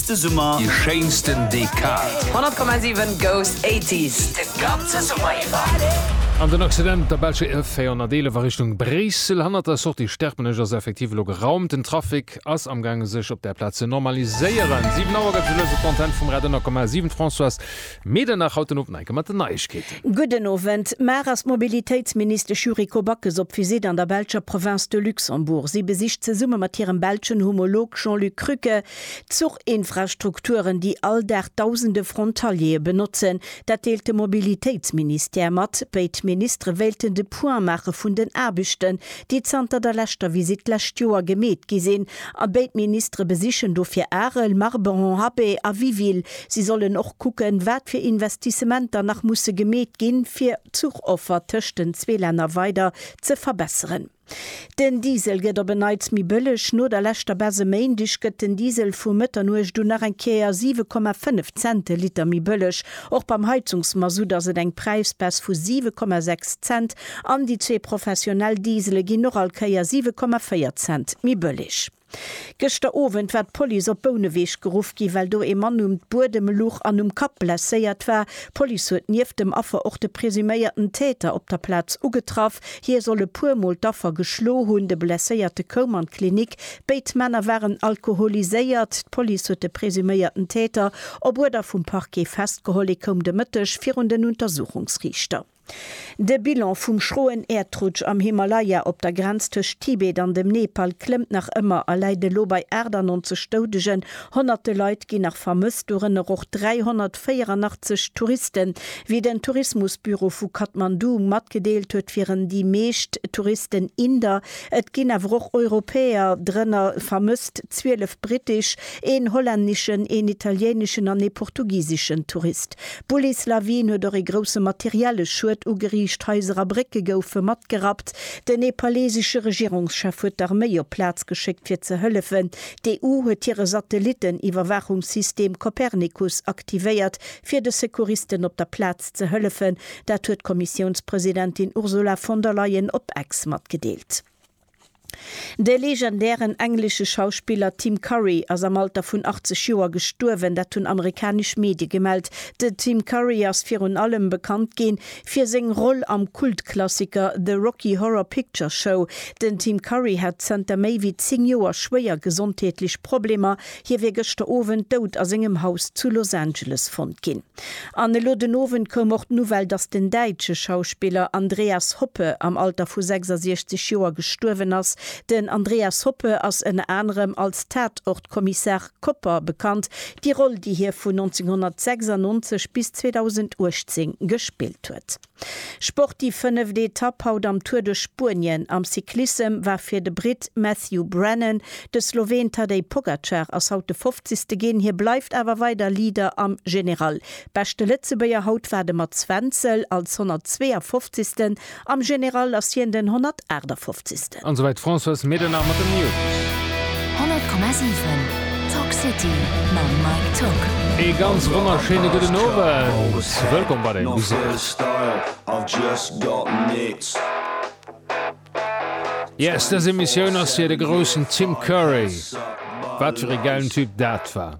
De Summer. Déi schéinsten Dekad. 100,7 goes 80s de ganze Summer iwwer. An den Accident der belsche E 411 a Richtung Bréissel hannert der Sortie Sterpenech ass effektiv elo geraumt. Den Trafic ass amgaange sech op där Plaz ze normaliséieren. 7 Auer gëtt et elo esou d'Antenne vum Radio 100,7. Françoise Medernach haut den Owend nach eng Kéier mat den Neiegkeeten. Gudden Owend. Mar ass d'Mobilitéitsministesch Yuriko Backes op Visitt an der belscher Province de Luxembourg. Si besicht zesumme mat hirem belschen Homolog Jean-Luc Krücke, D'Zuchinfrastrukturen, déi all Dag dausende Frontaliere benotzen, dat deelt de Mobilitéitsministère mat. Béid Ministere wéilten de Point maache vun den Aarbechten, déi zanter der leschter Visitt d'lescht Joer gemeet gi sinn. A béid Ministere besichen dofir Arel, Marberon-Happé a Wiville. Si sollen och kucken, wat fir Investissementer nach musse gemeet ginn, fir d'Zuchoffer tëscht den zwee Länner weider ze verbesseren. Den Diesel gëtt op en Neits méi bëlleg, No der leschter Baisse e Méindeg gëtt den Diesel vu Mëtternuecht un nach eng Kéier 7,5 Cent de Liter méi bëlleg. Och beim Heizungsmasutt ass et eng Präisbaisse vu 7,6 Cent an déi zwee professionell Diesele ginn och all Kéier 7,4 Cent méi bëlleg. Gëschter Owend war d'Police op Bouneweg geruff ginn, well do ee Mann um d'Buedem luch an um Kapp blesséiert war. D'Police huet nieft dem Affer och de presuméierten Täter op der Plaz ugetraff. Hie soll e puer Mol d'Affer geschlo hunn. De Blesséierte koum an d'Klinik. Béid Männer waren alkoholiséiert. D'Police huet de presuméierten Täter op Uerder vum Parquet festgeholl. Hie koum de Mëtteg virun den Untersuchungsriichter. De Bilan vum schroen Äerdrutsch am Himalaya op der Grenz tëscht Tibet an dem Nepal klëmmt nach ëmmer a läit elo bei 98 Doudegen. Honnerte Leit ginn nach vermësst, dorënner och 384 Touristen, wéi den Tourismusbüro vu Kathmandu matgedeelt huet. Wieren déi meescht Touristen Inder, et ginn awer och Europäer drënner vermësst, 12 brittesch, een hollänneschen, een italieneschen an ee portugiseschen Tourist. D'Bullieslawin huet och ee grousse materielle Schued ugeriicht, Haiser a Brécke goufe matgerappt. Den nepalesesche Regierungschef huet d'Arméi op d'Plaz geschéckt fir ze hëllefen. D'EU huet hire Satellitten-Iwwerwaachungssystem Copernicus aktivéiert, fir de Secouristen op der Plaz ze hëllefen. Dat huet d'Kommissiounspresidentin Ursula von der Leyen op Ex matgedeelt. De legendären englesche Schauspiller Tim Curry ass am Alter vun 80 Joer gestuerwen, dat hunn amerikanesch Medie gemellt. De Tim Curry ass virun allem bekannt gi fir seng Roll am Kultklassiker The Rocky Horror Picture Show. Den Tim Curry hat zënter méi wéi 10 Joer schwéier gesondheetlech Problemer, Hie wier gëschter Owend dout a sengem Haus zu Los Angeles fonnt ginn. An elo den Owend koum och d'Nouvelle, datt den däitsche Schauspiller Andreas Hoppe am Alter vu 66 Joer gestuerwen ass. Den Andreas Hoppe ass ënner anerem als Tatort-Kommissar Kopper bekannt, déi Roll, déi hie vun 1996 bis 2018 gespillt huet. Sport Déi fënneft Etapp haut am Tour de Spuenien am Cyclissem war fir de Britt Matthew Brennan. De Sloween Tadej Pogacar ass haut de fofzegste ginn, hie bleift awer weider Leader am General. Beschte Lëtzebuerger haut war de Mats Wenzel als 152. Am General ass hien den 158. An souwäit d'Françoise Medernach mat den News. 100,7 Talk City mam Mike Tock. Ee ganz wonnerschéine gudden Owend. Wëllkomm bei der Emissioun. Yes, dës Emissioun ass fir de groussen Tim Curry. Wat fir ee gäilen Typ dat war.